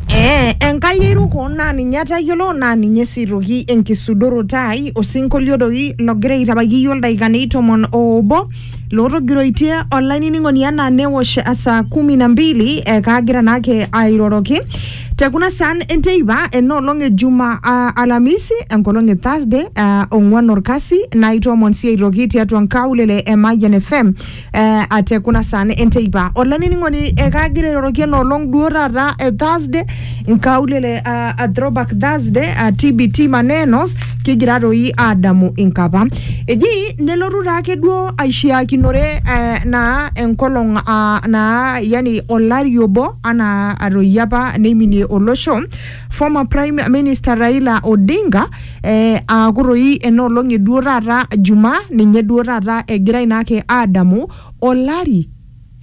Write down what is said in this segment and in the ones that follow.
Ee, Enkai airuko naa ninye atayiolo naa ninye sii toki enkisudoroto ai osinkolio doi logira aitabaiki iyiook ildaikani tomon oobo lootogiroitie olainining'oni enaa newosh saa kumi na mbili eh, kaagira naake airoroki te kuna saan enteipa ena olong e juma ah, alamisi enkolong e thursday ah, ong'uan orkasi naitoomon sii aitoki tiatua nkaulele e Mayian FM eh, ate kuna saa ne enteipa olainining'oni ekaagira airoroki enoolong duo taata eh, thursday nkaulele ah, ah, throwback thursday ah, tbt manenos kigira toi aadamu inkapa eji nelotu taake duo aishiakinore eh, naa enkolong ah, naa yani olari obo anaa atoi apa neiminie olosho former prime minister raila odinga eh, aaku toi enoolong eduo taata juma ninye duo taata egirai naake aadamu olari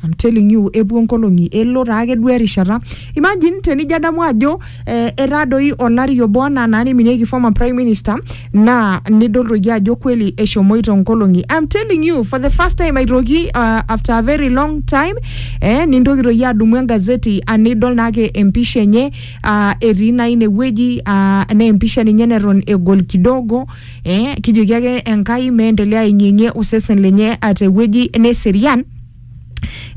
I'm telling you epuo nkolong'i elo taake duo erishata imagine tenijo adamu ajo eh, etaa doi olari obo anaa naa niminieki former prime minister naa nidol toi ajo kweli eshomoito nkolong'i I'm telling you for the first time aitoki uh, after a very long time eh, nintoki toi adumu engazeti anidol naake empisha enye aa etii naa inewueji aa naa empisha ninye neton egol kidogo eh, kijoki ake Enkai meendelea aing'ieng'ie osesen lenye ah, tewueji neserian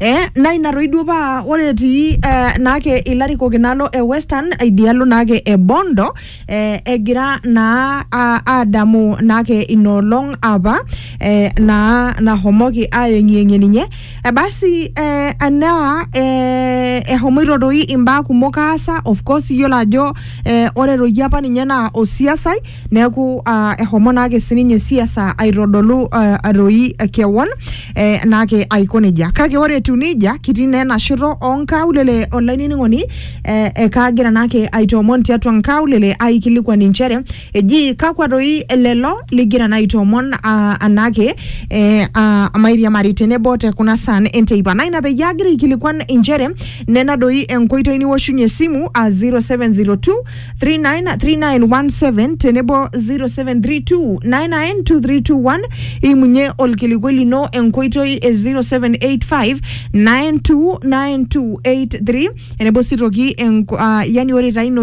Eh, naa ina toi duo paa ore etii eh, naake ilarikok inaalo e western idialo naake e bondo eh, egira naa a- aadamu naake inoolong apa eh, naa nahomoki ayeng'iyeng'ie ninye Eh, basi eh, anaa eh, ehomoito doi imbaa kumok aasa of course iyiolo ajo eh, ore doi apa ninye naa osiasai neeku ah, ehomo naake sininye siasa aitodolu ah, doi eh, kewon eh, naake aiko nejia kake ore etiu nejia kitii naa ena shoto onkaulele olainining'oni eh, eh, kaagira naake aitoomon tiatua nkaulele aikilikuan inchere Eji kakwa doi lelo ligira naa aitoomon ah, anaake eh, ah, mairiamari tenebo te kuna saan enteipa. Naa ina peyie agira aikilikuan inchere nena doi enkoitoi niwoshunye esimu ah, 0702 393917 tenebo 0732 992321 imunye olkilikuai lino enkoitoi e 0785 929283 tenebo sii toki enko- ah, yani ore taa ina oitoi